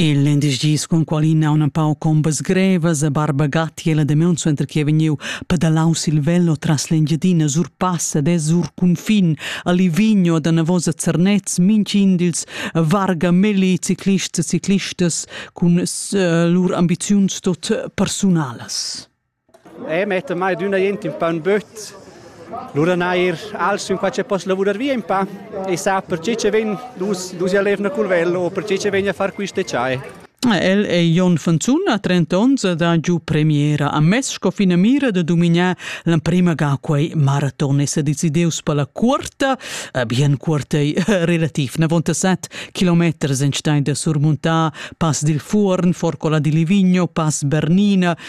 Il lindesch dis cun qual ina una pau combas grevas e barba gatiela de meun suenter che vegniu pedalaus il velo tras l'Engiadina sur passa de sur cunfin a Livigno da navosa Zernez mincin dils varga melli ciclists e ciclistas cun uh, lur ambiziuns tot personalas. E metta mai d'üna jent ün pa ün böt. Lura neir als ün qua che poss lavurar via ün pa e sa perche che vegn dus dus a lev na culvel o perche che vegn a far quiste chai. El è Jon Fanzun a 30 onns da giu premiera a mes sco finamira da dumignar l'emprima ga quei maraton e se decideus per la cuorta, eh, bien cuorta relativ 97 km enstein da surmuntar pass dil Fuorn, Forcola di Livigno, pass Bernina,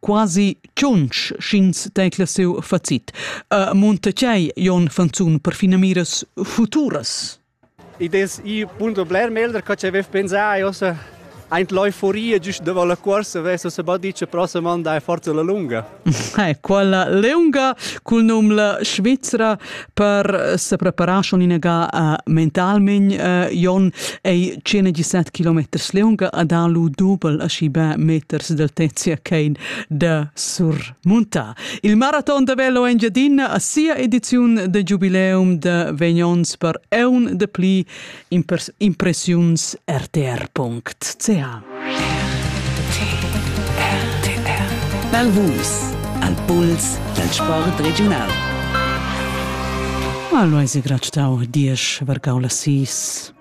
quasi tschunch sch'ins tecla siu facit. Uh, munta tgei Jon Fanzun per finamiras futuras? Ich des ich punto bler melder che avev pensà io se ein l'euforia giusto de la corsa veso se ba dice prossima anda è forza la lunga. Eh, quella leunga cul num la Svizzera per sepreparar schon inagà uh, mentalment uh, Jon ei 117 km leunga a da lu dobel a schi be meters del Tezia Kane de surmunta. Il maraton de Velo Engiadina a sia ediziun de giubileum de Vegnons per eun de pli impressiuns.rtr.ch Bel Vus al puls dal sport regiunal. Allo ise grat stau diesch vargau la sis.